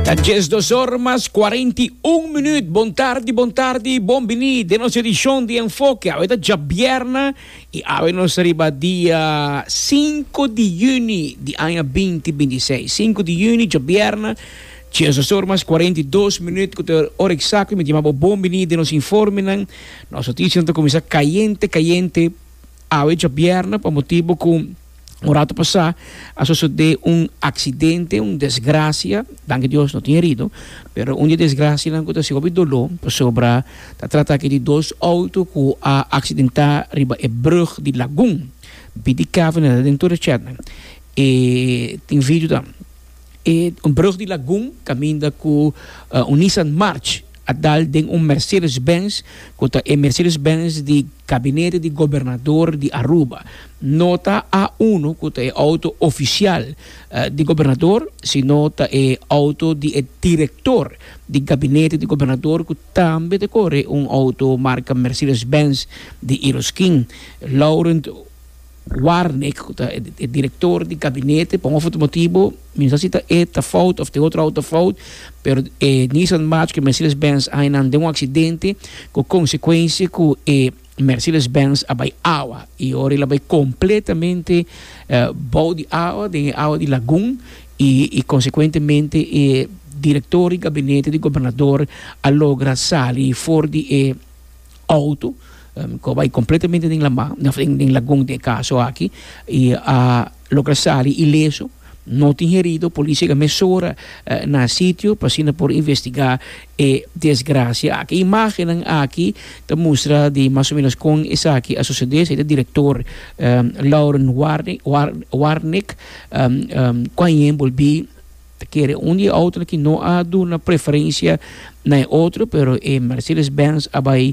Ta djes dosor mas kuarenta i un minüt. Bon tardi, bon tardi i bon biní den nos edishon di Enfoke. Awe ta djabièrnè i awe nos ta riba dia sinku di yüni di aña binti binti i seis. Sinku di yüni, djabièrnè, djes dosor mas kuarenta i dos minüt ku ta e ora eksakto di mi tima bo bon biní den nos informenan. Nos notishanan ta kuminsá kayente kayente awe djabièrnè pa motibu ku. Un rato pasá a sosodé un aksidente, un desgrasia, danki a Dios no tin herido, pero un di e desgrasianan ku ta hasi hopi doló pasobra ta trata aki di dos outo ku a aksidentá riba e brùg di Lagun, BDCavenel aden tur e chètnan, e tin video tam. E brug di Lagun kaminda ku un Nissan March a dal den un Mercedes Benz ku ta e Mercedes Benz di Gabinete di Gobernador di Aruba. No ta A uno ku ta e outo ofisial di gobernador, sino ta e outo di e direktor di Gabinete di Gobernador ku tambe ta kore un outo marka Mercedes Benz di Iroskin, Laurent. Warnick cu ta e director di gabinete, pa un of otro motibo, mi no sa si ta e ta fout of ta e otro auto fout, pero e Nissan March cu e Mercedes-Benz a enan den un accidente cu consecuencia cu e Mercedes-Benz a bay awa y ora el a bay completamente bou di awa, den e awa di lagun y y consecuentemente e director di gabinete di gobernador a logra sali for di e Auto cu a bay completamente den lama, den lagun den e caso aki, y a logra sali ileso, no tin herido, policia a yega mesora na sitio pa asina por investiga e desgracia aki. E imagennan aki ta mustra di mas o menos con esaki a sucede, esaki ta director Lauren Warnek cu a yen bolbi. Ta kere un di e autonan ki no a duna preferencia na e otro, pero e Mercedes Benz a bai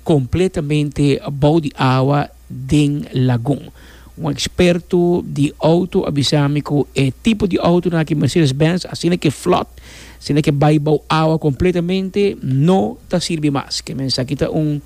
completamente bou di awa den lagun. Un experto di auto a bisa mi cu e tipo di autonan aki Mercedes Benz, asina ke flot, asina ke bai bou awa completamente, no ta sirbi mas. Ke mensaki ta un,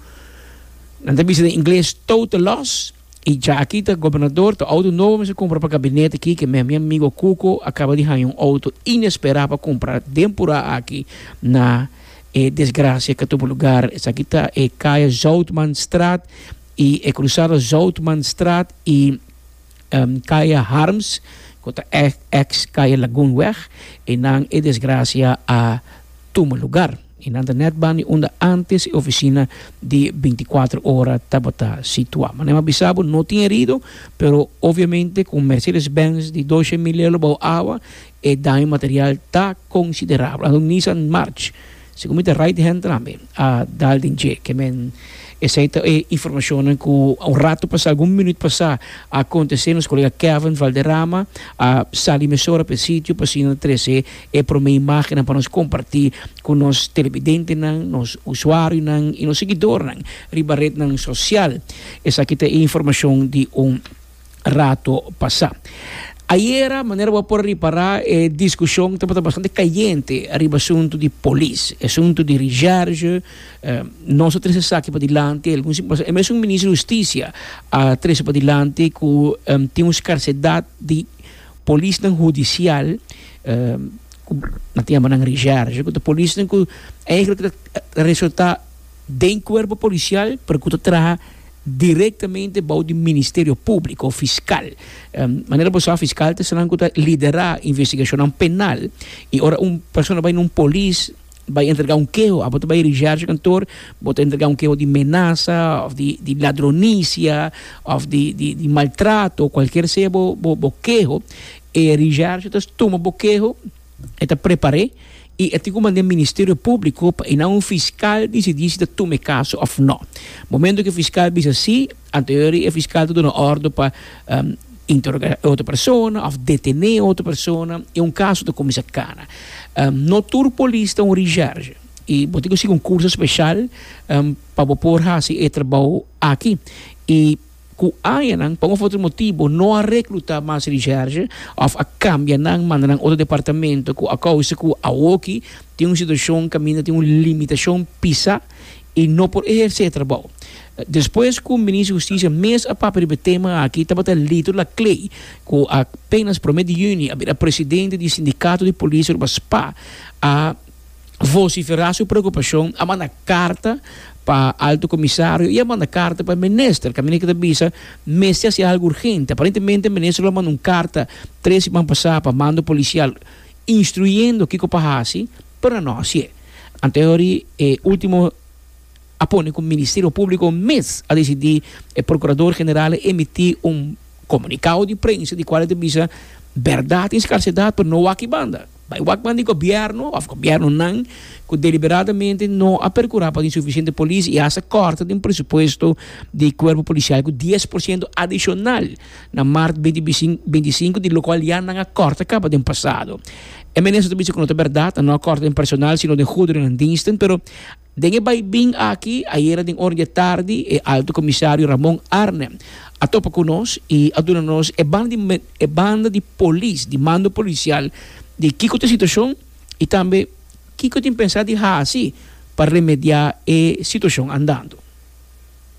nan ta bisa den ingles total loss. Y dja aki ta Gobernador ta auto nobo mester cumpra pa gabinete aki ke mes mi amigo Cuco a caba di haña un auto inespera pa cumpra den pura aki na e desgracia ke tubo lugar esaki ta e Calle Zoutman Straat y e cruzado Zoutman Straat y Calle Harms cu ta ex Calle Lagoon weg e nan e desgracia a tuma lugar. I nan ta nèt bani unda ántes e ofisina di binticuatro ora tabata situá. Manem a bisa bo, no tin herido, pero obviamente ku un Mercedes-Benz di doshe mil lelu bou awa, e daño material ta konsiderabel. Anto un Nissan March, segun mi ta right hand tambe, a dal den dje. Ke men, esei ta e informashonnan ku un ratu pasá, algun minüt pasá, a kontesé. Nos kolega Kevin Valderrama a sali mesora pa e sitio pa asina trese E promé imágennan pa nos kompartí ku nos telebidentenan, nos usuarionan i nos siguidornan riba retnan sosial. Esaki ta e informashon di un rato pasá. Ayera, manera bo a por a ripará, e diskushon tabata bastante kayente riba asuntu di polis, e asuntu di rishèrge. Nos a trese esaki padilanti, e algun siman pasá e mesun Minister di Hustisia a trese padilanti ku tin un skarsedat di Polisnan hudisial ku na tempu nan reserve ku ta polisnan ku eigentlik ta resulta den kuerpo polisial pero ku ta traha direktamente bou di ministerio publiko òf fiskal manera bo sa fiskal ta esei nan ku ta lidera investigashonnan penal i ora un persona bai na un polis bai entrega un keho abo ta bai richarge kantoor bo ta entrega un keho di menasa of di di ladronisia of di di di maltrato cualkier sea bo bo bo keho e richarge ta tuma bo keho e ta prepar'e y e tin cu manda e ministerio publico pa e na un fiscal dicidi si ta tuma e caso of no momento cu e fiscal bisa si Anterior di e fiskal ta duna ordo pa interogá e otro persona òf detené e otro persona i un kaso ta kuminsá kana. No tur polis ta un risèrge i bo tin ku sigui un kurso speshal pa bo por hasi e trabou aki. I ku añanan pa un òf otro motibu no a reklutá mas risèrge òf a kambia nan manda nan otro departamento ku a kousa ku awoki tin un situashon kaminda tin un limitashon pisa. i no por ehersé e trabou. Despues ku Minister Hustisia mes a papia riba e tema aki tabata Lito Laclay, ku apenas promé di yüni a bira presidente di Sindikato di Polis Aruba, spa, a vosiferá su preokupashon, a manda karta pa Alto Komisario i a manda karta pa e minister, kaminda ke ta bisa mester hasi algu urgente. Aparentemente e minister lo a manda un karta tres siman pasá pa mando polisial instruyendo kiko pa hasi, pero nan no hasié. Antehorí e último a pone ku Ministerio Públiko mes a desidí e Prokurador General a emití un komunikado di prensa di kual e ta bisa bèrdat i skarsedat pero no wak i banda. Bai wak banda di gobièrnu òf gobièrnunan ku deliberadamente no a perkurá pa tin sufisiente polis i hasta kòrta den presupuesto di Kuerpo Polisial ku dies por siento adishonal. na mart beinti beinti sinku di lokual ya nan a kòrta kaba den pasado. E minister ta bisa ku no ta bèrdat, nan no a kòrta den personal sino den guderennan dingsten, pero den e baibin aki ayera den ora di e tardi e Alto Comisario Ramon Arnem a topa ku nos i a duna nos e banda di e banda di polis, di mando polisial di kiko ta e situashon i tambe kiko tin pensá di hasi pa remediá e situashon andando.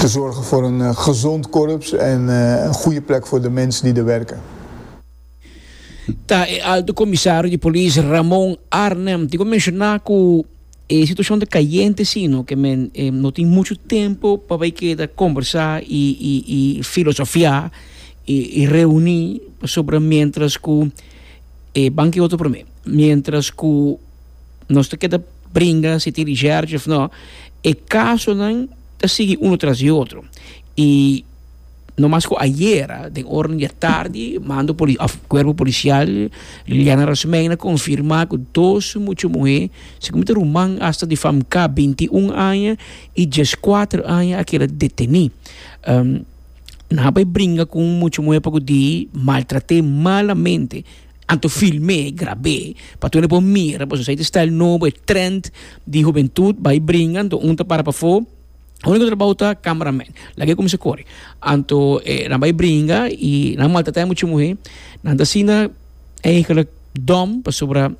te zorge for un gezond korps en un goeie plek for de mens di de werke. Ta e Alto Komisario di Polis Ramon Arnhem di ku menshoná ku e situashon ta kayente si no ke men no tin muchu tempu pa bai keda kombersá i filosofiá i reuní pasobra miéntras ku e ban ke otro promé miéntras ku nos ta keda bringa si tin ricerchi of no, e casonan ta sigui uno tras di otro y no mas cu ayera den ora di atardi mando poli of cuerpo policial Liliana Rosmeina confirma cu dos mucha muher segun ta ruman hasta di famk binti un aña y dies cuatro aña a keda deteni nan a bay bringa cu un mucha muher pacu di maltrate malamente Anto film'é, grab'é, pa tur e por mira, pues nos a hita e style nobo, e trend di hubentud, bai bringa, anto un ta para pafó, único trabou ta camera man, lag'é cuminsa core. Anto e nan bai bringa y nan maltrat'é mucha muhé, nan ta asina eigenlijk dom, pasobra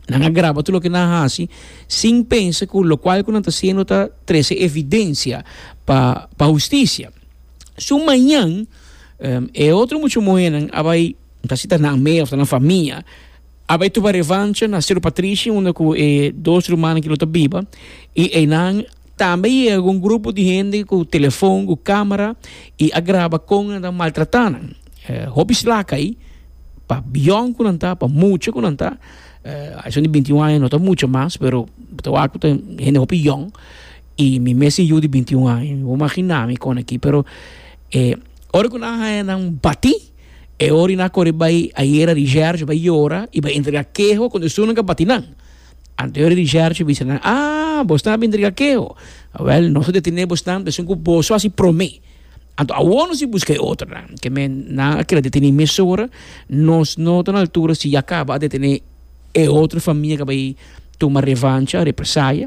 nan a graba tur loke nan haci sin pensa cu locual cu nan ta haciendo ta trece evidencia pa pa husticia. So mañan e otro mucha muhénan a bai. Ta si ta nan mea of ta nan famia. A bai tuba revancha na Cerro Patricio unda cu e dos rumannan aki lo ta biba y eynan tambe yega cu un grupo di hende cu telefon, cu camera y a graba con nan ta maltrata nan. Hopi slaca ayi pa bion cu nan ta, pa mucha cu nan ta, ason di binti un aña no ta mucha mas pero bo ta wak cu ta hende hopi yong y mi mes tin yu di binti un aña. Mi wou magina mi con aki pero ora cu nan a haña nan bati E ora i nan a kore bai ayera di Gerge bai yora i bai entrega keho con e sunan ka bati nan. Anteori di Gerge bisa nan ah bosnan a bin entrega keho. Wel nos a detene bosnan esun cu bos lo hasi prome. Anto awor nos tin busca e otronan. Keme nan a keda detene mesora nos no ta na altura si ya caba a detene e otro famia ka bai tuma revancha, represaya.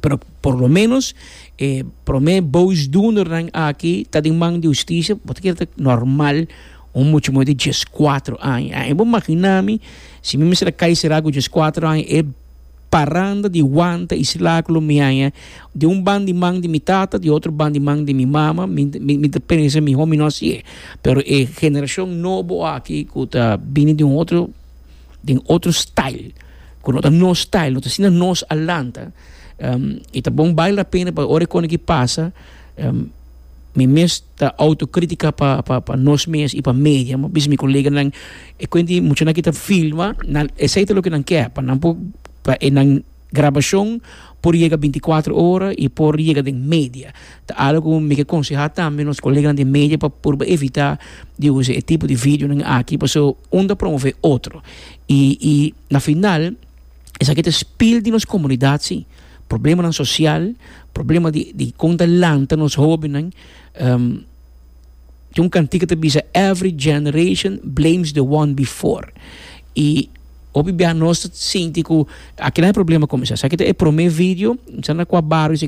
pero por lo menos e prome boosdoenernan aki ta den man di husticia, bo ta kier ta normal un mucha moe di dies kuater aña. Ahí bo magina mi si mi mester a kai sera ku dies kuater aña e paranda di wanta y sla ku lo miaña di un ban di man di mi tata di otro ban di man di mi mama mi mi ta pensa mihor mi no hasi'e pero e generacion nobo aki ku ta bini di un otro den otro style cu no ta nos style no ta asina nos a lanta um, y ta bon baila la pena pa ora e koneki pasa um, mi mes ta autocrítica pa, pa, pa nos mes y pa media mo bis mi colega nan e cuenti mucho nan kita filma nan esai ta lo que nan quer pa nan po pa e nan Grabashon por yega binti kuater ora i por yega den media. Ta algu ku mi ke konsehá tambe nos koleganan di media pa purba evitá di usa e tipo di videonan aki pasobra un ta promové otro i i na final esaki ta spil di nos komunidat sí, problemanan sosial, problema di di kon ta lanta nos hóbennan. Tin un cantica ta bisa every generation blames the one before y hopi bia nos ta sinti cu aki nan e problema comensa sa ki ta e prome video sa na cua barrio